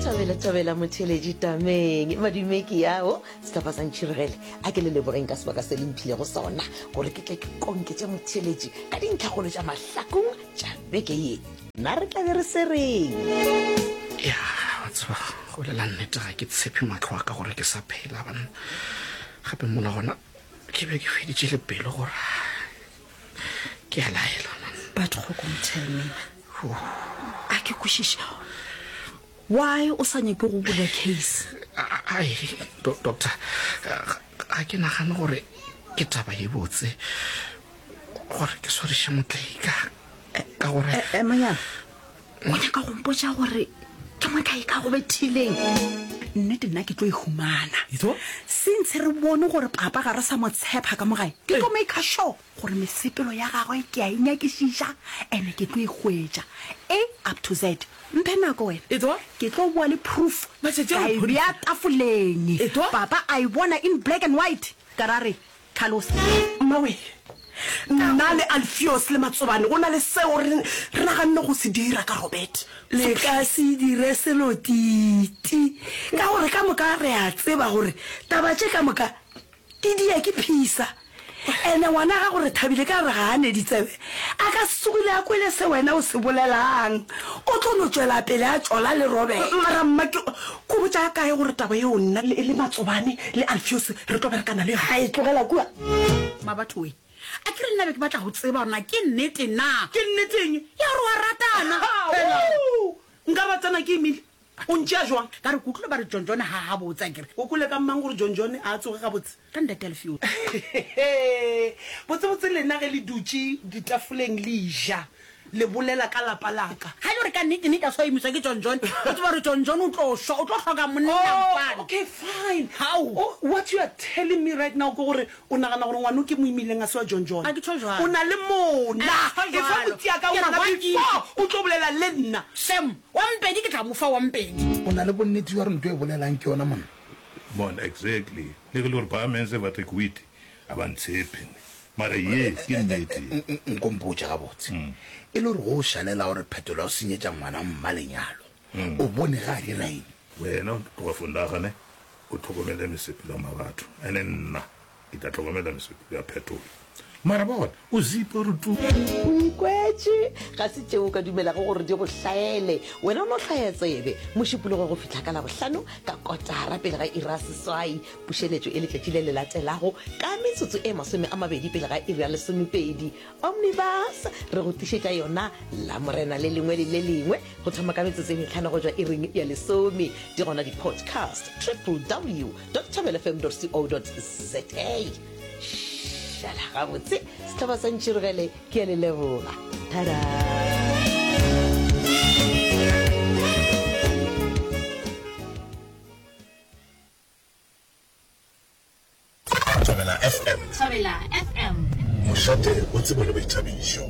thabela thabela motheletši tameng madumeki yago setlapa sa ntšhiregele a ke le lebogeng ka sebaka se le mphilego sona gore ke tle ke konke tša motheletši ka dintlhagolo tša mahlakong tša beke ye na re tlabe re se reng ya batseba go lela nnete ga ke tshepe matlho a ka gore ke sa phela banna gape mola gona ke be ke feditše le pelo gore ke a laelwa but go kong tell me a ke kwešiše why o sa nyake go bula case ai doctor ga ke nagane gore ke taba e botse gore ke swariše motlaika ka gore emanyana eh, eh, o nyaka go mpotsa gore ke mokae ka go bethileng nnete nna ke tlo e humana sintshe re bone gore papa ga re sa mo tshepa ka mogae ke tlo make sure gore mesepelo ya gagwe ke a e nyakišiša ene ke tlo e hwetša a up to z mphe nako wena ke tlo boa le proof ka e bea tafoleng papa a e bona in black and white ka ra re Tlhalosa. Mmawe, nna le Alfios le Matsobane go na le seo re naganne go se dira ka Robert. Le ka se dire selo titi ka gore ka moka re a tseba gore taba tše ka moka di dia ke phisa. Ene ngwana gago Rethabile ka re ga a ne ditsebe A ka se tsogile a kwele se wena o se bolelang. O tlo no tšwela pele a tšola le Robert. Mara mma ke ko botša kae gore taba yeo nna le le Matsobane le Alfios re tlo berekana le yona? Hai, tlogela kua. Mabatho we, a ke re nna be ke batla go tseba gore na ke nnete na. Ke nnete eng? Ya gore wa rata na? Hela! Nka ba tsena ke imile. O ntšea jwang? Ka re, Ke utlwile ba re John John ha a gabotse. A ke re, O kwele ka mang gore John John a tsoge gabotse? Ka Ntate Alfio. Hehe! Botsebotse lena ge le dutše ditafoleng le eja, le bolela ka lapa la ka. Ga e le gore ka nnete nnete a tshwaemiswa ke John John, o tseba gore John John o tlo šwa, o tlo hloka monna kwano. Oh, okay, fine. Hao! Oh, what you are telling me right now ke gore o nagana gore ngwana o ke mo imileng a se wa John John? A ke tšho jwalo. O na le mona. A ke tšho jwalo. Efa go tšea ka ngwana before o tlo bolela le nna. Shame! Wa mpedi ke tla mo fa wa mpedi. O na le bonnete bja gore nto e bolelang ke yona monna? Monna, Exactly. Le ge e le gore ba mense ba Tekwiti ga ba ntshepe ne. Mara yes, ke nnete. Nko mpotše gabotse. E le gore go o šalela gore Phetolo a o senyetša ngwana mma lenyalo, o bone ge a dira eng? Wena o tloga fo nagane o tlhokomele mesepelong a batho, ene nna. Ke tla tlhokomela meseto ya phetolo. Mara bona, o zipa gore tu. O ikwetše, ga se tšeo o ka dumelago gore di go hlaele. Wena o no hlaya tsebe. Mošupologo go fihla ka Labohlano ka kotara pele ga iri ya seswai. Pušeletšo e letšatši le le latelago ka metsotso e masome a mabedi pele ga iri ya lesomepedi. Omnibus, re go tlišetša yona Lamorena le lengwe le le lengwe go thoma ka metsotso e mehlano go tšwa iring ya lesome. Di gona di-podcast, ww dot thobelfm dot co dot za. Šala gabotse, sehlaba sa ntširogele, ke a le leboga. Tada! Thobela FM. Thobela FM. Mošate o tsebole boithabišo.